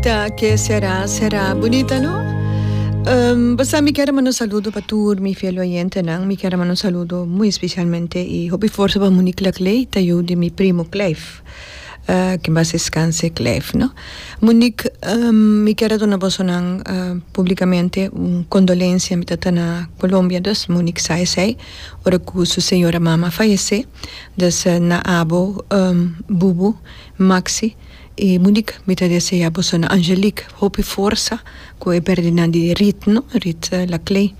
Ta ke será será bunita no bo sa mi kier a manda un saludo pa tur mi fiel oyentenan mi kier a manda un saludo muy especialmente y hopi fuerza pa Monique Laclay ta yu di mi primo Cleif que en paz descanse Cleif no Monique mi kier a duna bosonan publicamente un condolencia mi ta ta na Colombia dus Monique sa esey ora cu su señora mama a fayece dus na abo Bubu Maxi E Monique mi ta desea boso na Angelique hopi forsa cu e perdinan di Rit no Rit Laclay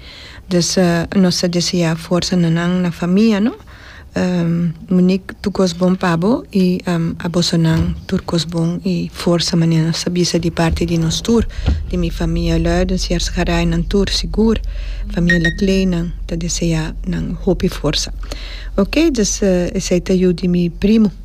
dus nos ta desea forsa na nan na famia no Monique tur cos bon pa bo y a boso nan tur cos bon y forsa manera nos ta bisa di parti di nos tur di mi famia Luidens y Arzgaray nan tur sigur famia Laclay nan ta desea nan hopi forsa oke dus esey ta yu di mi primo.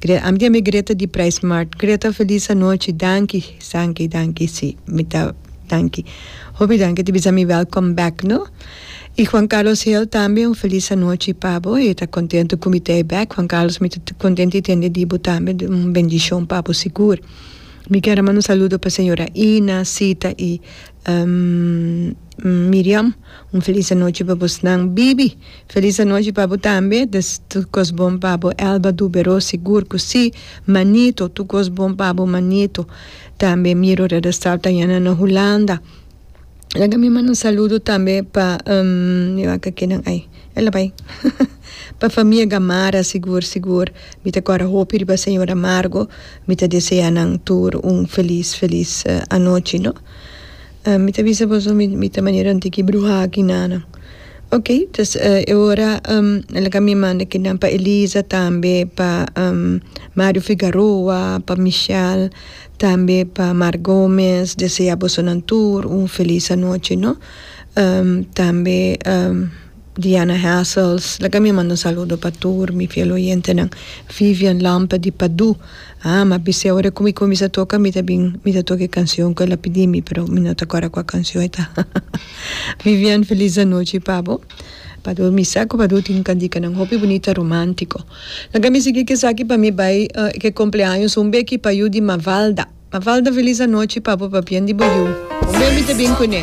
Gre, Am di ami Greta di Price Mart. Greta, Feliz anochi. Danki, danki, danki. Si, mi ta danki. Hopi danki, e ta bisa mi welcome back no. I Juan Carlos Hale tambe un feliz anochi pa bo. E ta contentu cu mi ta e back. Juan Carlos, mi ta contentu di tende di bo tambe. Un bendicion pa bo sigur. Mi kier a manda un saludo pa señora Ina, Sita y Miriam. Un feliz anochi pa bosnan. Bibi. Felis anochi pa bo tambe. Tur kos bon pa bo Elba Dubero sigur ku si manito tur kos bon pa bo manito tambe miro redestal ta yana na Hulanda laga mi manda un saludo tambe pa mi wak kinan ai e lo bai pa famia Gamarra sigur sigur mi ta kora hopi riba señor Amargo mi ta desea nan tur un felis felis anochi no. Ah mi ta bisa boso mi mi ta manera un tiki bruha aki nana ok dus e ora el a cambia e manda kinan pa Elisa tambe pa Mario Figaroa pa Michel tambe pa Mark Gomez desea bosonan tur un feliz anochi no tambe. Diana Hassels, laga mi manda un saludo pa tur mi fiel oyentenan. Vivian Lampe di Padu, ah ma bis'e ora ku mi kuminsa toka mi ta bin mi ta toka e kansion ku el a pidi mi pero mi no ta kòrda kua kansion e ta. Vivian feliz anochi pa bo. Padu mi sa ku Padu tin kantikanan hopi bunita romantiko. Laga mi sigui kesaki pa mi bai ke kompleaños un beki pa yu di Mavalda. Mavalda feliz anochi pa bo pa bian di bo yu. Hombia mi ta bin kuné.